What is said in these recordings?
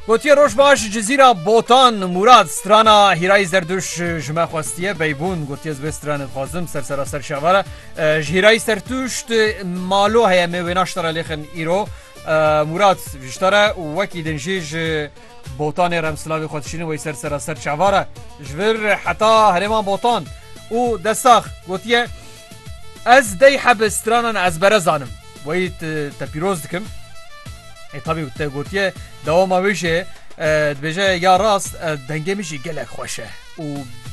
Gotiye roj baş Cizîra Botan Mûrad strana Hîrayî Zerduş ji me xwestiye beybûn gotiye ez vê stranê dixwazim ser seraser şevara ji Hîrayî Sertûşt malo heye me wêna ji te re lêxin îro Mûrad ji te re û wekî din jî ji botanê re em silavê xwe dişînin wey ser seraser çavara ji vir heta herêma botan û destax gotiye Ez dey heb stranan ezbere zanim. Weyî te pîroz dikim. Ê tabî te gotiye dewama wê jê dibêje ya rast dengê min jî gelek xweş e û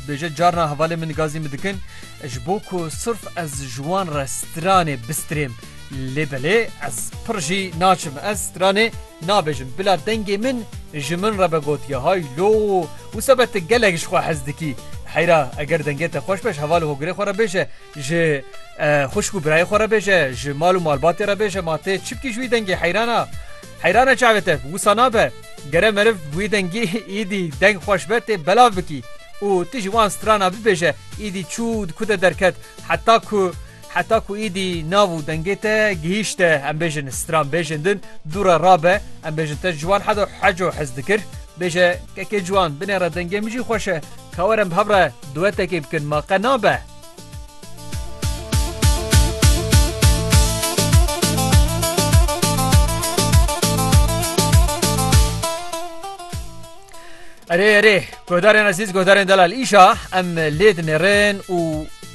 dibêje carna hevalên min gazî min dikin ji bo ku sirf ez ji wan re stranê bistirêm lê belê ez pir jî naçim ez stranê Nabêjim bila dengê min ji min re be gotiye hay lo wisa be ti gelek ji xwe hez dikî. Heyra eger dengê te xweş be ji heval û hogirê xwe re bêje, ji xwişk û birayê xwe re bêje, ji mal û malbatê re bêje ma tê çi bikî ji wî dengê heyrana heyrana çavê te wisa nabe. Gere meriv wî dengî îdî deng xweş be tê belav bikî û ti ji wan strana bibêje îdî çû di ku de derket heta ku Heta ku êdî nav û dengê te gihîşte em bêjin stran bêjin din dû re rabe em bêjin te ciwan hedo heco hez dikir bêje kekê ciwan binê re dengê min jî xweş e ka werin bi hev re duetekê bikin ma qe nabe. Erê erê guhdarên ezîz guhdarên delal îşa em lê dinêrin û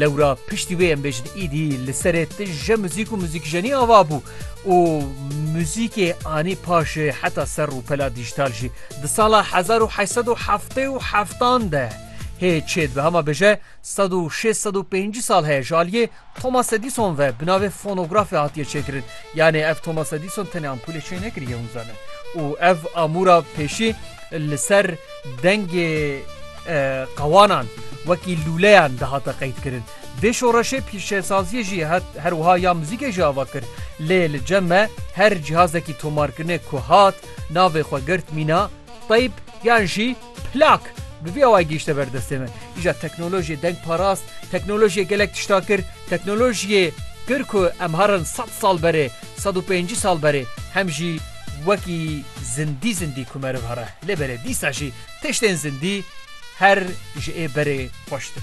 Lewra piştî wê em bêjin îdî li serê tije muzîk û muzîkjenî ava bû û muzîkê anî paşê heta ser rûpela dîjtal jî. Di sala hezar û heşt sed û heftê û heftan de hê çê dibehama bêje sed û şêst sed û pêncî sal heye ji aliyê Thomas Edison ve bi navê fonografê hatiye çêkirin. Yanê ev Thomas Edison tenê ampûlê çênekiriye hûn zanin û ev amûra pêşî li ser Dengê qewanan wekî lûleyan dihate qeydkirin. Vê şoreşê pîşesaziyê jî hat, her wiha ya muzîkê jî ava kir. Lê li cem me her cihazekî tomarkirinê ku hat, navê xwe girt mîna teyp yan jî plak. Bi vî awayî gihîşte ber destê me. Îja teknolojiyê deng parast, teknolojiyê gelek tişta kir, teknolojiyê kir ku em herin sed sal berê, sed û pêncî sal berê hem jî wekî zindî zindî ku meriv here. Lê belê dîsa jî tiştên zindî her ji ê berê xweştir.